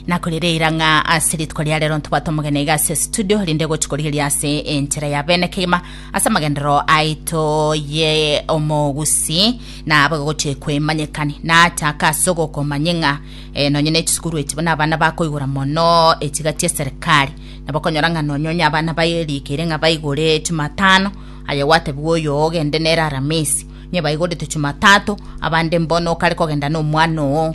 nakorereira ng'a ase rituko ria rero ntobwate omogeni iga ase studio rinde gochi korigeria ase enchera ya bene kegima ase amagendero aito ye omogusi na abo gochi kwemanyekani nachaka ase ogokomanye ng'a eh, nonye ne chisukuru echi buna abana bakoigora mono echiga chia serikali nabo konyora ng'a nonye onye abana bairikeire ng'a baigore chimatano aye gwatebigwa oyo ogende nere aramisi nye baigorete chimatatu abande mbono okare kogenda nomwana oo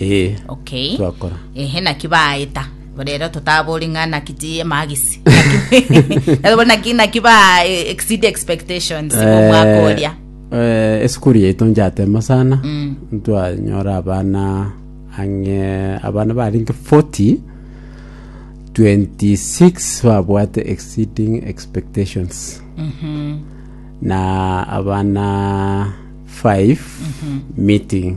Ee, okay twakora. ehe naki baeta rero totabori ng'a naki ti emagisi Naki- naki naki ba eh, exceed expectations Eh, omwaka oria eh, esukuru yaito njatema sana Mm. ntwanyora abana ang'e abana baringe 40 26 babwate exceeding expectations Mhm. na abana 5 meeting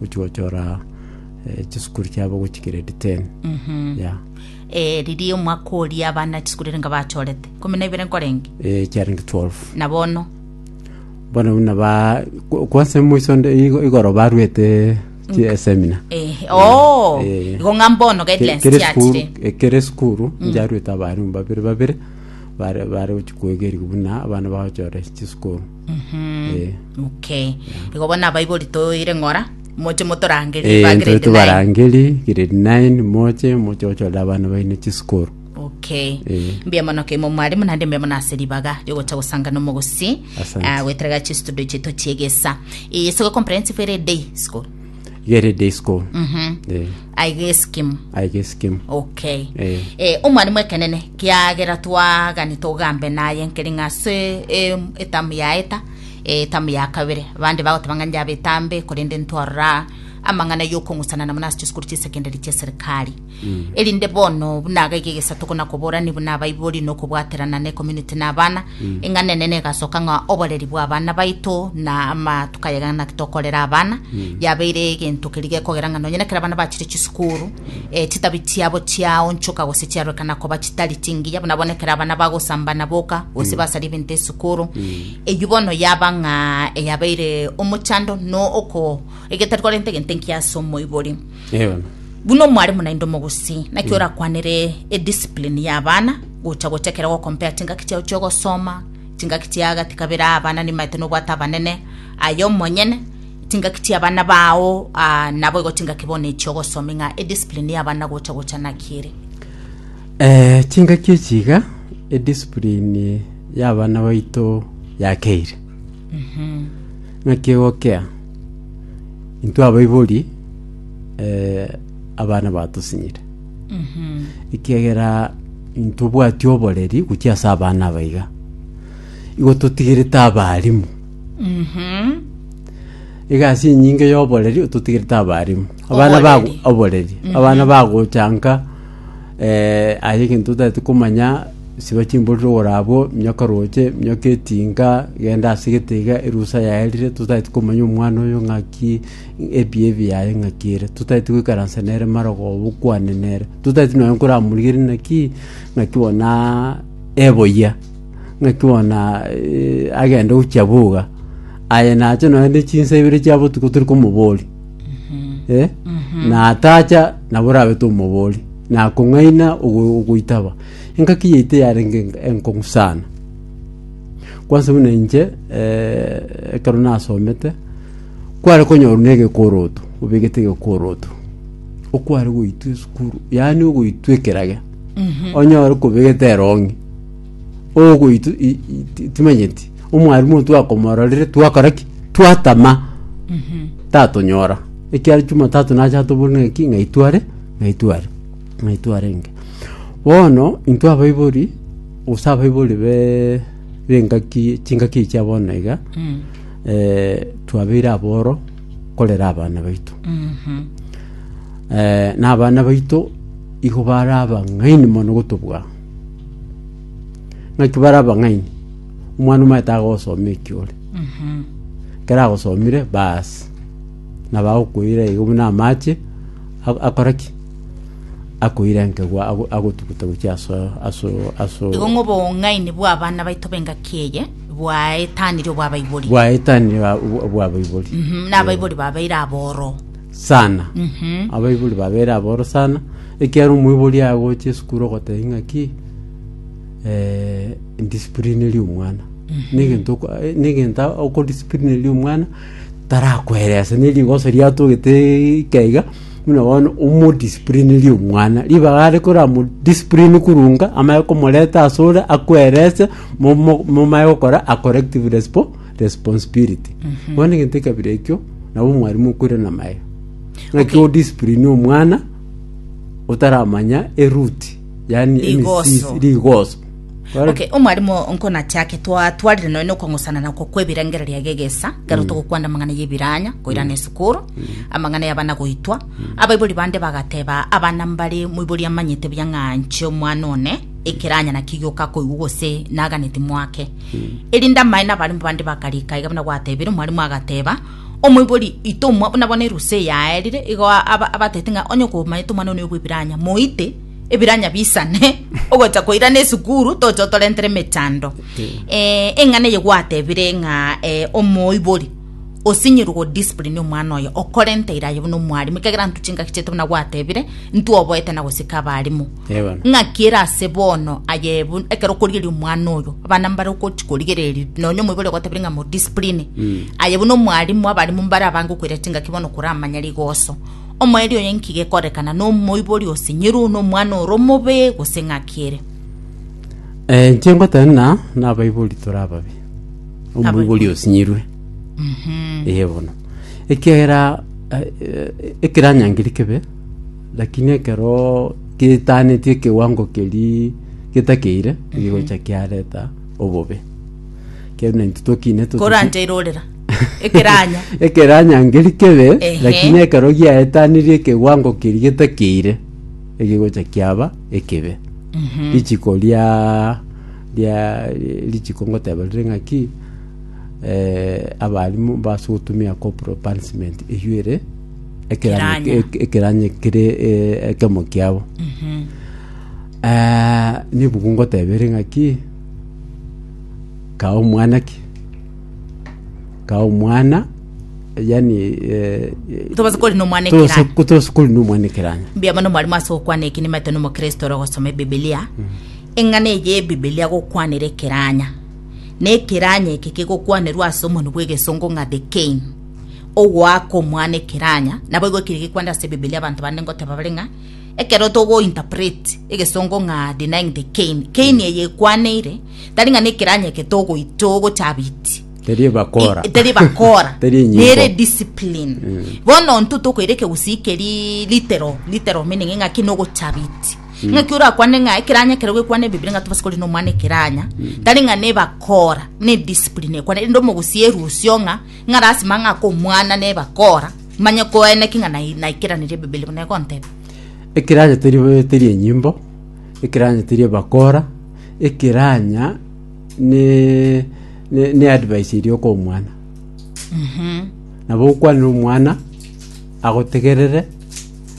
gochia gochora eh, chisukuru chiabo gochia grade 10 ya Eh, riria omwaka oria abana chisukuru erenga bachorete kumi na ibere nkorenge eh, chiarenge 12 na bono bono buna ba ku- kwanse moiso nde- igo- igoro barwete chi- eh, seminar Eh, oo Eh. igo ng'a mbono Ke- guidelines kere sukuru chiachire eh, kere sukuru njarwete abarimu babere babere bare bare gochia kwegerigwa buna abana bagochora chisukuru Mhm. Eh. Okay. Igo bono abaibori toire ng'ora, moche motorangerie Eh, ba ntwe grade nine. tobarangeri grade 9 moche moche gochorera abana baino chisukuru Okay. Eh. Mbuya mono keimo mwarimu naende mbuya mono ase ribaga riogocha gosangana omogosi Asante. ah, goeterera chistudio chiaito chiegesa. Eye siko comprehensive ere day school. Gere day school. Mhm. Eh, aiga esikimu aige sikimu. okay Eh. eh, omwarimu ekenene kiagera twagani togambe naye nkeri ng'ase eh, etamu yaeta eh, etamu ya kabere bande bagoteba ng'a njabe etambe korende ntwarora amang'ana yokong'usana namo nase chisukuru chi'esekendari chi'eserikari erinde bono buna agaiga egesato kona koborani buna abaibori na okobwaterana na ecommunity na abana eng'ana enene egasoka ng'a oboreri bwa abana baito na amatuko ayagana naki tokorera abana yabeire egento keri gekogera ng'a nonye nekero abana bachire chisukuru eh, chitabi chiabo chiaonchoka gose chiarorekana koba chitari chingiya buna bono ekero abana bagosambana boka gose basaria ebinto esukuru eyio bono yaba ng'a eyabeire omochando no oko egetari korenta egento enkiya ase omoibori Eono. Buna omwarimu naende omogusii, naki orakwanere ediscipline ya abana gocha gocha ekero ogokompea chingaki chiao chi'ogosoma, chingaki chia gati kabere aa abana nibaete nobwate abanene, aye omonyene, chingaki chia abana bao, ah, naboigo chingaki bono echi ogosomia ng'a ediscipline ya abana gocha gocha naki ere. Eh, chingaki echi iga ediscipline y'abana baito yakeire Naki egokea, intwe abaibori abana batosinyire, ekiagera ntobwati oboreri gochia ase abana aba iga. Igo totigerete abarimu, egasi enyinge y'oboreri totigerete abarimu, abana bago oboreri, abana bagochanka. Aye egento totaeti komanya, siba chimborero igoro abwo, minyoka roche, minyoka etinga, genda ase egetega, erusa yaye erire, totaeti komanya omwana oyo ng'aki, ebiya ebi yaye ng'aki ere. Totaeti goikaransa nere marogoba bokwane nere. Totaeti nonye nkoramorigereria naki, ng'aki bona eboyia, ng'aki bona agende gochia boga. Aye nache nonye ne chinsa ibere chia botuko tori komoboria. Eh? na atacha nabo orabete omobori na akong'aina ogo- ogoitaba engaki yaito yarenge enk- enkong'u sana kwansa buna inche eh, ekero nasomete kware konyorwa na egekoroto obegete egekoroto okware goitwa esukuru yaani ogoitwa ekerage onyore kobegete erong'i ogoito i- i- ti- timanyeti omwarimu oyo twakomororire twakora ki twatama tatonyora ekiagera jumatatu nacha atobori ng'aki ng'ai tware ng'ai tware ng'ai twarenge bono intwe abaibori gose abaibori be b'engaki chingaki echi abo bono iga eh, twabeire aboro korera abana baito eh, na abana baito igo bare abang'aini mono gotobua ng'aki bare abang'aini omwana omanyete agosoma ekiore ekero agosomire baasi nabo agokoira igo buna amache a- akore ki akoira enkegwa ago- agotuguta gochia aso- aso- aso- igo ng'a obong'aini bw'abana baito b'engaki eye bwaetanire obw'abaibori bwaetanire a- obwa- obw'abaibori Mhm, na abaibori babeire aboro sana Mhm. abaibori babere aboro sana Ekiagera omoibori agocha esukuru ogotebia ng'aki eh, ndisiplineri omwana negento oko- eh, negento okodisiplineri omwana tarakoeresa ne rigoso riatogete ikaiga buna bono omodisiplineri omwana ribaga are koramodisiplini korunga amanye komoreta ase ore akoerese momo- momaye gokora a corrective respo- responsibility bono egento ekabere ekio nabo omwarimu okoirana maega ng'aki odisiplini omwana otaramanya eruti, yani Rigoso. emisiisi, rigoso. Kore- Okay, omwarimu nkonachake twatwarire nonya okwang'usana nako kwebirengererio age egesa kero togokwana amang'ana y'ebiranya koirana esukuru amang'ana y'abana goitwa abaibori bande bagateba abana mbare moibori amanyete buya ng'a nche omwana one ekiranya naki gioka koigwa gose naganeti mwake erinde amaene abarimu bande bakarika iga buna gwatebire omwarimu agateba Omoibori itomwa buna bono erusa eyaerire, igo abatebete ng'a onye okomanyete omwana one bw'Ebiranya, moite Ebiranya bisane ogocha koirana esukuru toche otorentere emechando. Eh, eng'ana eye gwatebire ng'a eh, omoibori osinyirwe go discipline omwana oyo okorenta iraye buna omwarimu ekegera ntwe chingaki chiaito buna gwatebire ntwe oboete na gosika abarimu Ewana. Ng'aki ere ase bono aye ebu- ekero okorigeria omwana oyo abana mbare ogochi korigereria nonya omoibori ogotebirie ng'a modiscipline aye buna omwarimu abarimu mbare abange okoira chingaki bono koramanya rigoso omoerio oye nki gekorekana na omoibori osinyiru na omwana ore omobe gose ng'aki ere Eh, inche ngoteba ng'a nabaibori tore ababe omoibori osinyirwe eye bono ekiagera eh, eh, ekeranyangeria kebe Lakini ekero getaaneti ekewango keria getakeire, egegocha kiareta obobe. Ekeene naintwe tokine totuki- koranja irorera ekeranya ekeranya ngeri kebe Ehe. lakini ekero giaetanirie ekewango keria getakeire egegocha kiaba ekebe richiko ria ria richiko ngoteba rire ng'aki eh, abarimu mbase gotumia corporal punishment eywo ere Ekeranyo Ekeranyo. eke- ekeranyo kere e- ekemo kiabo Eh, nebuku ngotebere ng'aki kae omwana ki kae omwana yani eh, Tobasa kori nomwana tose- ekeranyo. tose kori nomwana ekeranyo mbuya mono mwarimu ase gokwana eki nimaete nomokristo ore gosoma ebibilia eng'ana eye y'ebibilia gokwanera ekeranya na ekeranya eke kegokwanerwa ase omoni bw'egesongo ng'a the cane ogoaka omwana ekeranya. Naboigo ekeri gekwenda ase Ebibilia abanto bande ngoteba bare ng'a ekero togo interpret egesongo ng'a denying the cane, cane eye ekwaneire tari ng'a nekeranya eke togo togochabiti Teri ebakora. I- teri bakora Teri enyimbo. nere discipline bono intwe tokoira ekegusii keri litero litero meaning ng'a ki nogochabiti ng'aki orakwane ng'a ekeranya ekero gekwana ebibiri ng'a tobasa korina omwana ekeranya tari ng'a nebakora ne discipline ekwane rende omogusii erusio ng'a ng'a lasima ang'e ake omwana nebe akoora, manye koene ki ng'a nai- naikeraneria Ebibeli buna egonteba. Ekiranya teri teri enyimbo, ekiranya teri ebakora, ekiranya ne ne ne advice eria okoa omwana. Nabo okwanera omwana agotegerere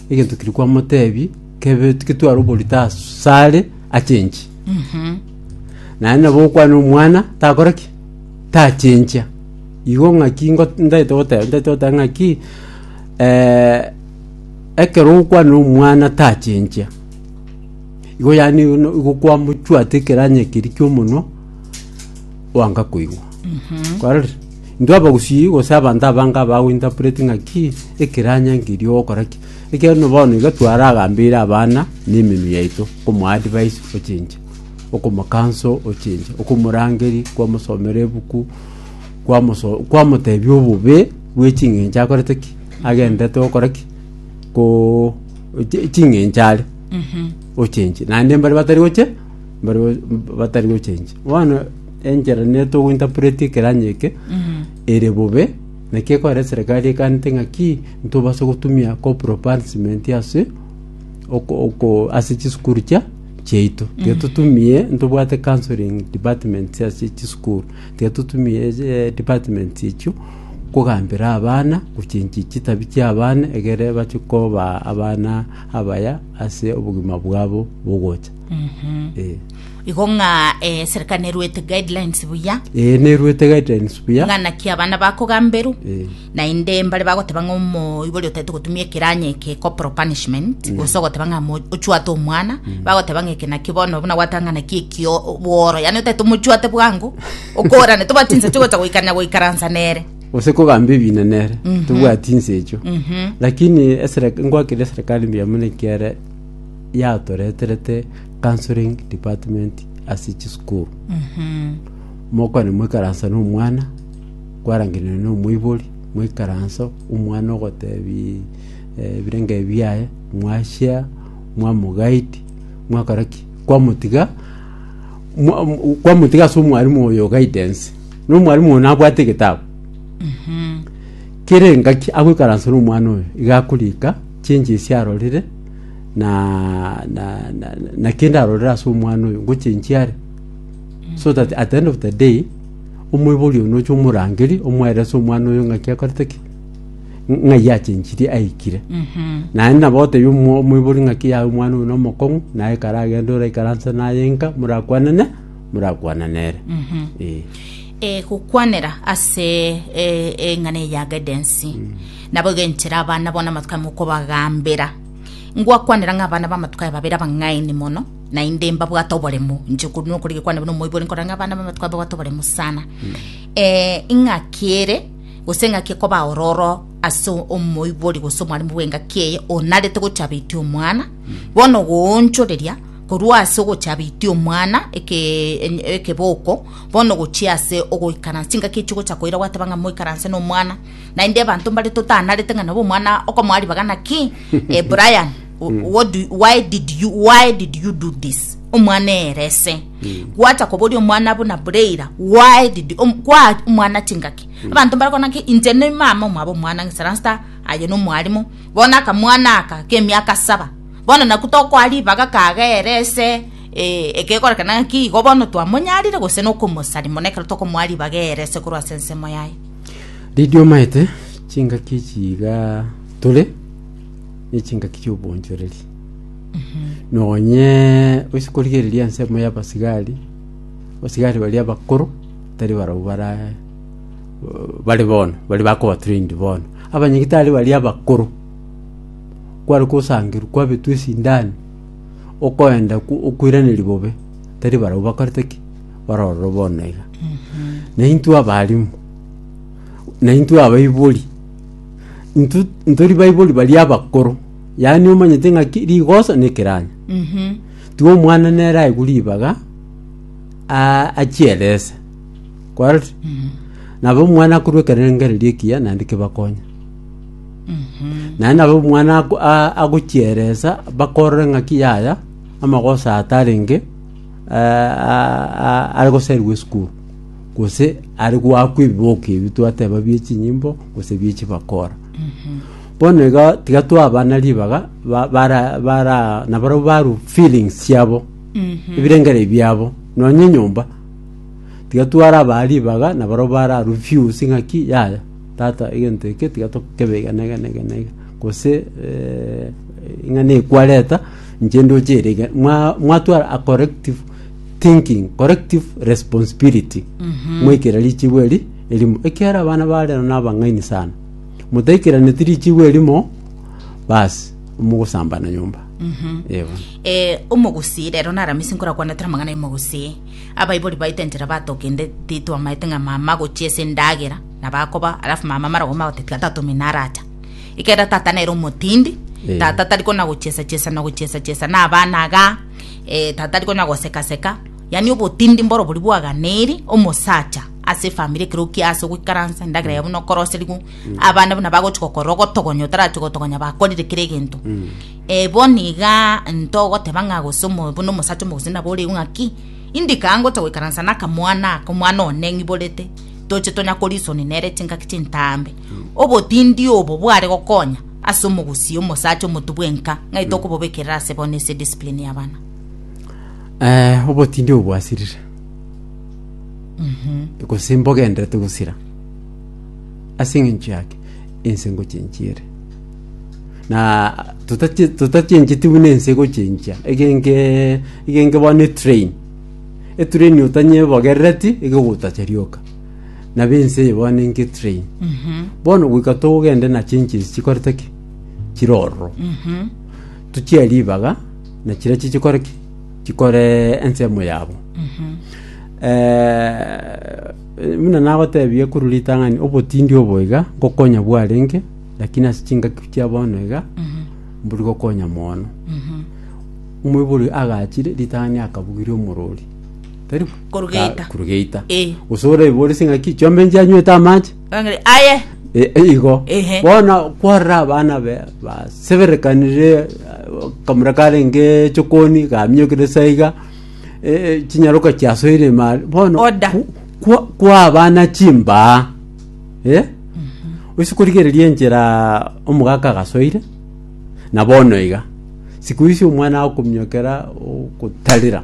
egento keria kwamotebi kebe ketware oborito asare achenchie. Naende nabo okwanera omwana takore ki? tachinchia. Igo ng'aki ngo ntaete goteba, ntaete goteba ng'aki eh, ekero okwana na omwana tachinchia. Igo yani no igo kwamochwati ekeranya ekeri kia omonwa, oanga koigwa. Kwarorire? Intwe abagusii gose abanto abange abago interpret ng'aki ekeranya nkeri ogokora ki. Ekereno bono iga twaragambeire abana na emenwa yaito, komo advise ochinche. okomokansa ochinche, okomorangeria, kwamosomera ebuku, kwamoso- kwamotebia obobe bwe ching'encho akorete ki, agendete gokora ki, ko chi- ching'encho are ochinche. Naende mbare batari gocha, mbare go- batari gochenchi. Bono enchera nigo togo interpret ekero onye eke, ere bobe, naki ekore eserekari ekanete ng'aki, ntobase gotumia corporal punishment ase oko- oko ase chisukuru chia. chiaito. Tiga totumie ntobwate counseling departments ase chisukuru. Tiga totumie eh, departments echio kogambera abana gochenchi chitabi chi'abana egere bache koba abana abaya ase obogima bwabo bogocha. Eh. igo ng'a eh, serikali neruete guidelines buya Ee, neruete guidelines buya. ng'a naki abana bakogamberwa Eh. Naende mbare bagoteba ng'a omoibori otaete gotumia ekeranya eke corporal punishment, gose ogoteba ng'a mo- ochwate omwana, bagoteba ng'a eke naki bono buna gwateba ng'a naki ekio bworo, yaani otaete omochwate bwango, okorane tobwati insa chigocha goikarania goikaransa nere. gose kogamba ebina nere tobwati insa echio lakini esere- ngwakire eserekari mbuya mono ekiagera yatoreterete counselling department ase chisukuru mokwane moikaransa na omwana Kwarangereria nomoibori, Moikaranso, omwana ogotebi eh, ebirengo ebi biaye, mwachia, mwamogaiti, mwakora ki? Kwamotiga mwa- m- kwamotiga ase omwarimu oyo guidance. Nomwarimu oyo nabwate egetabu. Kere engaki agoikaransa nomwana oyo, iga akorika chinche esi arorire na na na, na kende arorire ase omwana oyo, ngochenchiare so that at the end of the day Omoibori one oche omorangerie, omoerese omwana oyo ng'aki akorete ki? Ng'ai achenchirie aikire. Naende nabo otebie omo- omoibori ng'aki yaye omwana oyo nomokong'u, naye ekero agenda oraikaranse naye nka, morakwanane, morakwanane ere. Eh. Eh, gokwanera ase eh, eng'ana eye ya guidance nabo iga enchera abana bono amatuko amo okobagambera ngwakwanera ng'a abana b'amatuko aya babere abang'aini mono naende mbabwate oboremo, inche korwa nokore gekwane buna omoibori nkorora ng'a abana b'abanto babwate oboremo sana. Eh, ing'aki ere gose eng'aki ekoba ororo ase omoibori gose omwarimu bw'engaki eye onarete gochabetia omwana bono goonchoreria korwa ase ogochabetia omwana eke- en- ekeboko bono gochia ase ogoikaransa chingaki echio ogocha koira gwateba ng'a moikaranse na omwana naende abanto mbare totanarete ng'a nabo omwana okomoa ribaga naki eh, brian Mm. what do, why did you why did you do this omwana erese Mm. gwata koboria omwana buna bureira why did um, kwa omwana chingaki Mm. abanto barakona ki inche ne mama omwabo omwana ngisaransta aye no mwalimu bona akamwana aka kemiaka saba bono naku tokoa ribaga kaga erese eh, ekegorekana ki igo bono twamonyarire gose nokomosari mono ekero tokomoa ribaga erese korwa ase ensemo yaye ridio maete chingaki chiga tore ne chingaki chi'obonchoreri. Nonye gochia korigereria ensemo y'abasigari, abasigari baria abakoro tari barabwo bara bari bono bari bakoba trained bono abanyagitari baria abakoro kware kosangerwa kwabetwa esindani okoenda ku- okoiraneria bobe tari barabwo bakorete ki barorwo bono iga naintwe abarimu naintwe abaibori Intwe ntori baibori baria abakoro yaani omanyete ng'aki rigoso na ekeranya Mhm. tiga omwana nere aigwe ribaga a- achierese kwarorire nabo omwana akorwa ekerengererio ekiya naende kebakonye Mhm. naende nabo omwana ako- a- agochieresa bakorore ng'aki yaya amagoso atarenge eh, a- a- are goserigwa esukuru gose are goakwa ebiboko ebi twateba bie chinyimbo gose bie chibakora bono iga tiga twabana ribaga ba- bara bara nabarabwo baru feelings chiabo ebirengere biabo nonya enyomba tiga twarabaa ribaga nabarabwo bara refuse ng'aki yaya tata egento eke tiga tokebe iga na iga na iga na iga gose eh, ing'ana ekwareta inche ndoche ere iga Mwa- mwatwara a corrective thinking collective responsibility mwaikera richibu eri erimo ekiara abana barero nabang'aini sana mutaikeraneti richibu erimo basi mogosambana nyomba Ee bono. eh, omogusii rero naramisi nkorakwanetera amang'ana y'omogusii abaibori baito enchera batogende titwamaete ng'a mama agochia ase endagera nabakoba alafu mama mara gokoma gote tiga tata omino aracha ekiagera tata nere omotindi Eh. tata tari kona gochiesa chiesa na gochiesa chiesa na abana igaa Tatari konya goseka-seka, yaani obotindi mboro boria bwaganeiri omosacha ase efamiri ekero okia ase ogoikaransa endagera ya buna okoroseriwa abana buna bagochi gokorora ogotogonya otarachie gotogonya bakorire kera egento Eh, bono iga ntogoteba ng'a gose omo- buna omosacha omogusii nabo oreu ng'aki indika ngocha goikaransa na akamwana aka omwana one ng'iborete toche tonya korisoni nere chingaki chintambe Obotindi obo bware gokonya ase omogusii omosacha omotu bwenka, ng'ai tokobobekerera ase bono ase ediscipline y'abana? Eh, obotindi obo bwasirire gose mbogenderete gosira ase eng'encho yake ense ngochenchia ere na totache- totachencheti buna ense egochenchia egenge egenge bono etrain etrain otanyebogerereti iga egotacha rioka na b'ense eye banenke train bono goika togende na chinchiri chikorete ki chire ororo tuchie ribaga na chiria chichikore ki chikore ensemo yabo Eh, buna nagotebie korwa ritang'ani obotindi obo iga ngokonya bwarenge lakini ase chingaki chia bono iga mbori gokonya mono omoibori agachire ritang'ani akabugiria omorori tari Kurugeita. kurugeita Eh. gose oraiborese ng'aki chiombe inche anywete amache Ang'e- aye E- e- igo Ehe. bono kwarora abana be baseberekanire eh, kamura karenge chokoni gaminyokire saiga eh, eh, chinyaroka chiasoire emari bono Oda. ku- kwa- kwa abana chimbaa eh? oise korigereria enchera omogaka agasoire na bono iga siku isi omwana akominyokera ogotarera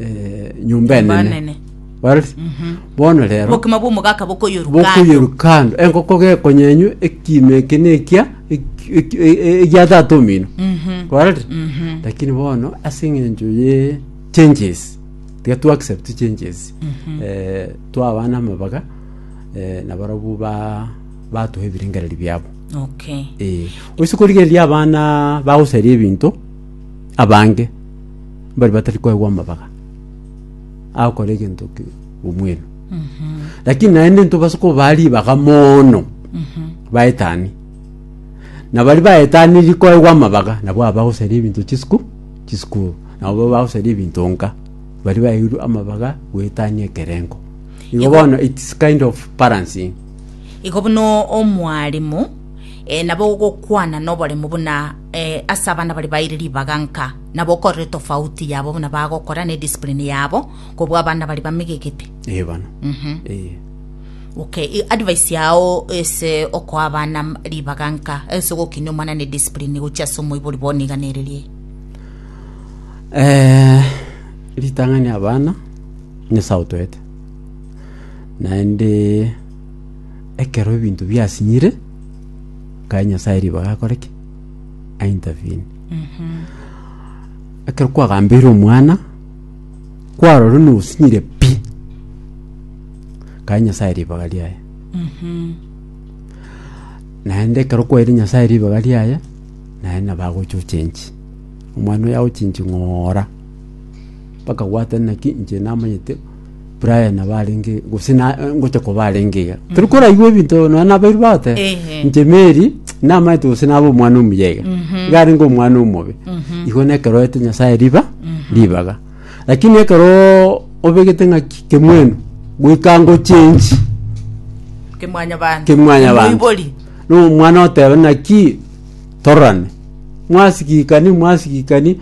eh, nyomba Nyomba enene enene. Barati? bono rero obokima bw'omogaka bokoyoruka bokoyerukando enkoko gekonyenywa ekima eke nekia eki- eki- e- e- egia tata omino korete lakini bono ase eng'encho ye changes tiga tu accept changes Eh, twaba namabaga eh, nabarabwo ba batuha ebirengereri biabo okay Eh, oise korigereria abana bagosaria ebinto abange mbare batari koegwa amabaga agokora egento omwenu lakini naende ntobase kobaa ribaga mono baetani na bari baetaniri koegwa amabaga nabo abagosaria ebinto chisiku chisikuru nabo bagosaria ebinto nka bari baeirwe amabaga goetania ekerengo igo bono its kind of balancing igo buna omwaremo na bogokwana noboremu buna ase abana baria baeire ribaga nka, na bokorere tofauti yabo buna bagokora ne discipline yabo kobua abana baria bamegegete. Eh, bana. Mhm. Eh. Okay, i- advice yao ase okoa abana m- ribaga nka ase gokinia omwana ne discipline gochia ase omoibori bono iga nererie. Eh, ritang'ani abana nyasae otoete naende Ekero ebinto biasinyire, nkae Nyasae ribaga akore ki? Aintervene. Ekero kwagambeire omwana, kwarorire nosinyire pi, nkae Nyasae ribaga riaye. Naende ekero kwaire Nyasae ribaga riaye, naende nabo agocha ochenchi. Omwana oyo agochinchi ng'ora, mpaka gwatanera ki? Inche namanyete Brian abarenge gose na ngocha kobarenge iga tari koraigwa ebinto nonya nabairu bagote Ehe. inche Mary namaete gose nabe omwana omuya iga iga arenge omwana omobe igo na ekero oete Nyasaye riba ribaga lakini ekero obegete ng'aki kemwenu goika ngochenji kemwanya bantu kemwanya bantu Emoibori. no omwana oteba naki tororane mwasigikani mwasigikani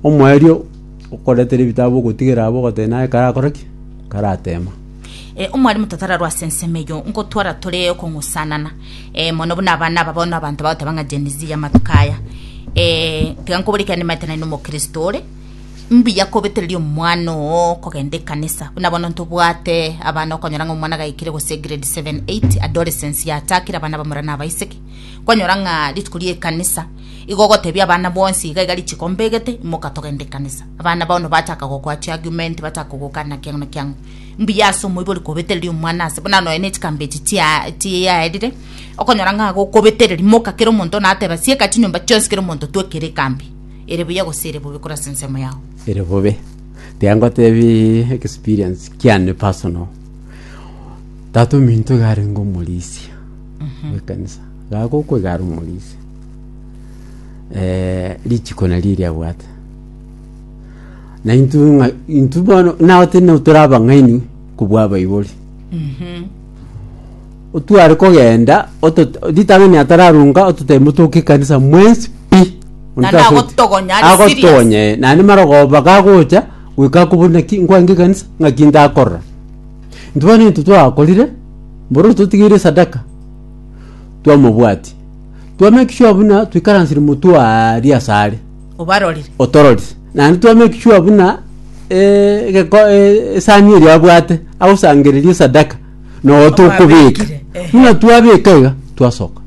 omoerio Okoretera ebitabu ogotigera abwo ogoteba naye karakore ki? Karateema. Eh, omwalimu tatararwa ase ensemo eyio, nkotwara tore okong'usanana. Eh, mono buna abana aba bono abanto bagoteba ng'a Gen Z y'amatuko aya. Eh, tiga nkobore ekero nimaete nari nomokristo ore, mbuya kobetereria omwana oo kogenda ekanisa. Buna bono ntobwate abana okonyora ng'a omwana gaikire gose grade seven, eight, adolescence yachakire abana abamura nabaiseke, kwanyora ng'a rituko ri'ekanisa, Igo ogotebia abana bonsi iga iga rituko mbegete, imoka togende ekanisa. Abana bono bachaka gokoa chiargument, bachaka kogoka na kiang'u na kiang'u. Mbuya ase omoibori kobetereria omwana ase, buna nonya ne chikambe echi chia chiaerire, okonyora ng'a gokobetereria, moka kera omonto nateba sieka chinyomba chionsi kera omonto twekere ekambi. Ere buya gose ere bobe korwa ase ensemo yao. ere bobe tiga ngotebi experience kiane personal tata ominto iga arenge omorisia bw'ekanisa iga agokoiga are omorisia eh, richiko nario eriabwate na intu ng'a- intu bono nao tene tore abang'aini kobua abaibori otware kogenda otot- ritang'ani atararunga ototebe motoke ekanisa mwensi pi Na nagotogonya, ari serious. agotogonya eh, naende marogoba gagocha goika akobuna ki nkwange ekanisa ng'aki ndakorora intwe bono intwe twakorire mboro totigeire sadaka twamobwatia, twamake sure buna toikaransire motwe aria asare obarorire otororire naende twamake sure buna eh, egeko- eh, esani eria abwate agosangereria esadaka noo tokobeka Omwabekire, ehe. buna twabeka iga twasoka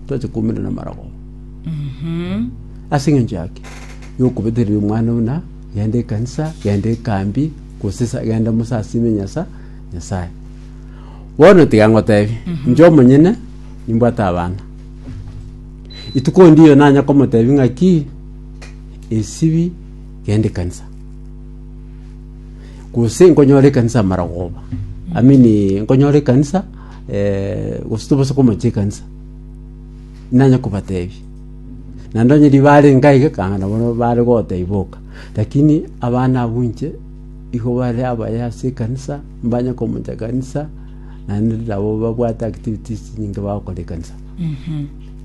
twacha koumera na amarogoba Mhm. ase eng'encho yake yokobeteria omwana buna genda ekanisa genda ekambi gose sa- genda mosasime nyasa nyasaye Bono tiga ngotebi, inche omonyene nimbwate abana. Ituko ndiyo nanya komotebi ng'aki esibi genda ekanisa. Gose nkonyora ekanisa amarogoba. I mean nkonyora ekanisa eh, gose tobasa komocha ekanisa. Nanya kobatebi. Naende onye riba are nkaiga kang'ana bono bare gotebi boka. Lakini abana abwo inche Igo bare abaye ase ekanisa, mbanye komocha ekanisa, naende nabo babwate activities nyinge bagokora ekanisa.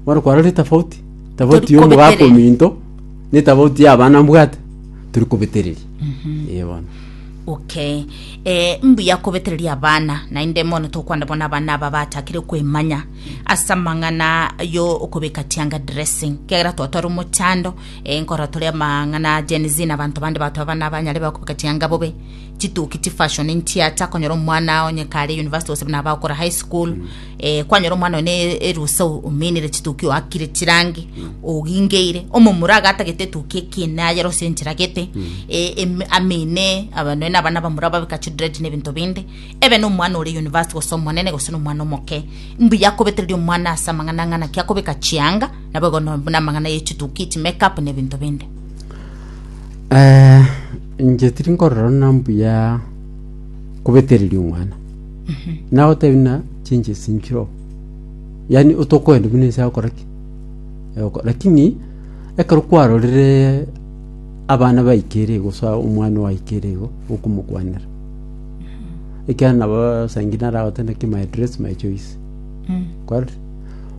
Bono kwarora etafauti, tafauti ya omogaka Torikobetereria. ominto, na etafauti ya abana mbwate, turi kobetereria. Ee bono. okay eh, mbuya kobetereria abana naende mono tokwanda bono abana aba batakire kwemanya ase amang'ana yo okobeka tianga dressing kiagera twatwara omochando Enkoro tore amang'ana a Gen Z na abanto bande batwaba buna abanyare bakobeka chianga bobe, chituki, chifashion, nchiacha konyora omwana onye kare university gose buna abagokora high school eh, kwanyora omwana one erusa ominire chituki oakire chirangi ogingeire omomura agatagete etuki ekine ayere ose enchiragete eh, em- amine abane na abana bamura babeka chidred na ebinto binde ebe na omwana ore university gose omonene gose na omwana omoke mbuya kobetereria omwana ase amang'ana ng'ana kiakobeka chianga Naboigono buna amang'ana ye chituki, chimake-up, na ebinto binde. Eh, inche tiri nkorora buna mbuya kobetereria omwana nagotebi na chinche sinchiro yaani otokoenda buna ense agokora ki Agoko- lakini ekero kwarorire abana baikere igo sa omwana owaikere igo okomokwanera ekiagera nabo saingi naragote naki my dress my choice kwarorire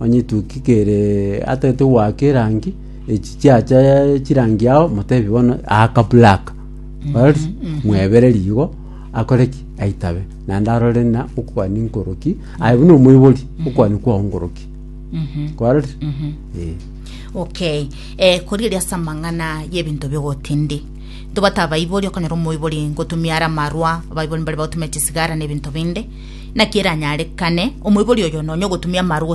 Onye etuki kere atagete goaka erangi, echi chiacha chirangi yao motebi bono aaka black. Barabisa? Mwebere rigo akore ki? Aitabe. Naende arore ng'a okoani nkoroki, aye buna omoibori okoani kwao nkoroki. Kwarorire? Eh. okay eh, korigereria ase amang'ana y'ebinto bi'ogotindi ntobwate abaibori okonyora omoibori ngotumia are amarwa abaibori mbare bagotumia chisigara na ebinto binde naki eranyarekane omoibori oyo nonya ogotumia amarwa gose